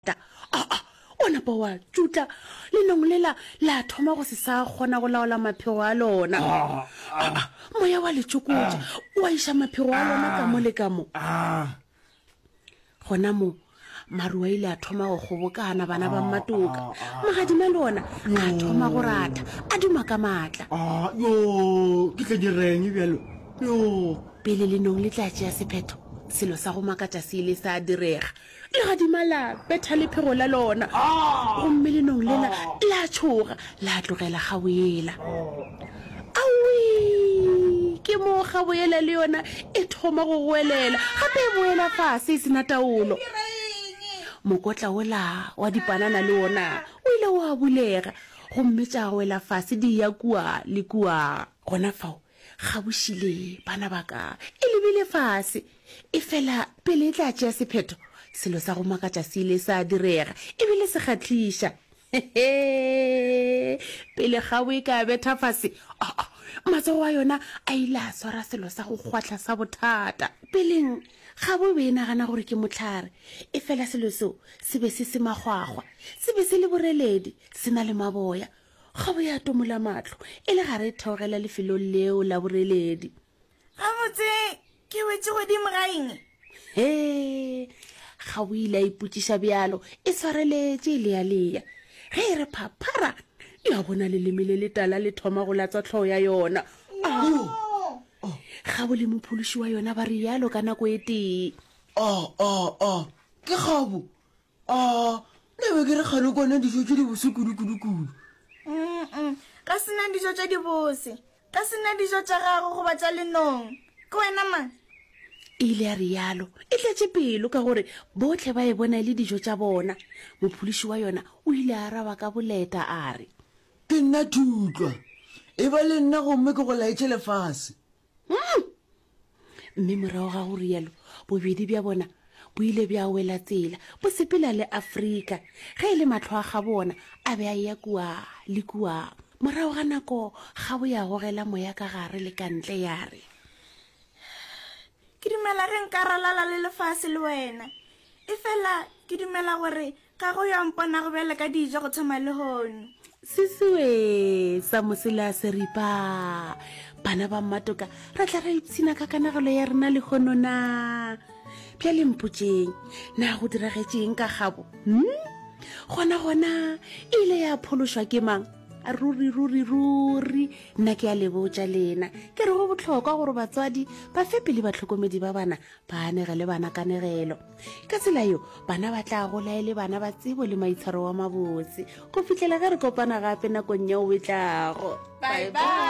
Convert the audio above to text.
ta aa o napa wa tšutla lenong lela la thoma go se sa kgona go laola maphego a lona aa moya wa letšokotša wa iša maphego a lona ka mo le ka mo gona mo maru a ile a thoma go kgobokana bana ba mmatoka magadima le ona a thoma go ratha a duma ka maatla yo ke tla direng bjalo yo pele lenong le tla tšea sephetho selo sa go makatša se ile sa direga Legadima la betha lephego la lona, gomme lenong lela la tšhoga la tlogela Gaboyela. Awii! Ke moo Gaboyela le yona e thoma go goelela, gape e boela fase e se na taolo. Mokotla wola wa dipanana le wona o ile wa bulega, gomme tša wela fase di eya kua le kua. Gona fao Kgaboši le, bana ba ka, e lebile fase. Efela pele e tla tšea sephetho, selo sa go makatša se ile sa direga, e bile se kgahliša. Hehe! Pele kgabo e ka betha fase, oh, oh, matsogo a yona a ile a swara selo sa go kgwahla sa bothata. Peleng, kgabo e be e nagana gore ke mohlare, efela selo seo se be se se makgwakgwa, se be se le boreledi, se na le maboya, Kgobo ya tomola matlo e le gare e theogela lefelong leo la boreledi. Gabotse ke wetše godimo ga eng? He, ga o ile a ipotšiša bjalo, e swareletše e lealeya. Ge e re phaphara, ya bona leleme le letala le thoma go latswa tlhogo ya yona. Oh. Gabo le mophološi wa yona ba rialo ka nako e tee. Oh, oh, oh, ke kgobo. A, nna be ke re kgale kwana dijo tše dibose kudu-kudu-kudu. Mm-mm, ga se na dijo tše dibose. Ga se na dijo tša gago goba tša lenong. Ke wena mang? E ile ya rialo, e tletše pelo ka gore bohle ba e bona e le dijo tša bona. Mopholiši wa yona o ile a araba ka boleta a re. Ke nna Thutlwa. E ba le nna gomme ke go laetše lefase. Mm! Mme morago ga go rialo, bobedi bja bona bo ile bja wela tsela, bo sepela le Afrika. Ge e le mahlo a ga bona, a be a eya kua le kua. Morago ga nako, kgabo ya gogela moya ka gare le ka ntle, ya re, Ke dumela ge nka ralala le lefase le wena. Efela ke dumela gore Ga go yo a mponago bjale ka dijo go thoma lehono. Sisiwe sa mosela se ripa. Bana ba mmatoka ra tla ra ipshina ka kanagelo ya rena lehono na. Bja le mpotseng, na go diragetšeng ka gabo? Hmm? Gona gona e ile ya phološwa ke mang? ruri ruri ruri nna ke a lebotša lena ke re go bohlokwa gore batswadi ba fe pele batlhokomedi ba bana ba anege le bana kanegelo ka tsela yo bana ba tla gola e le bana ba tsebo le maitshwaro wa mabotse go fitlhela ge re kopana gape nakong ya o e tlago bye bye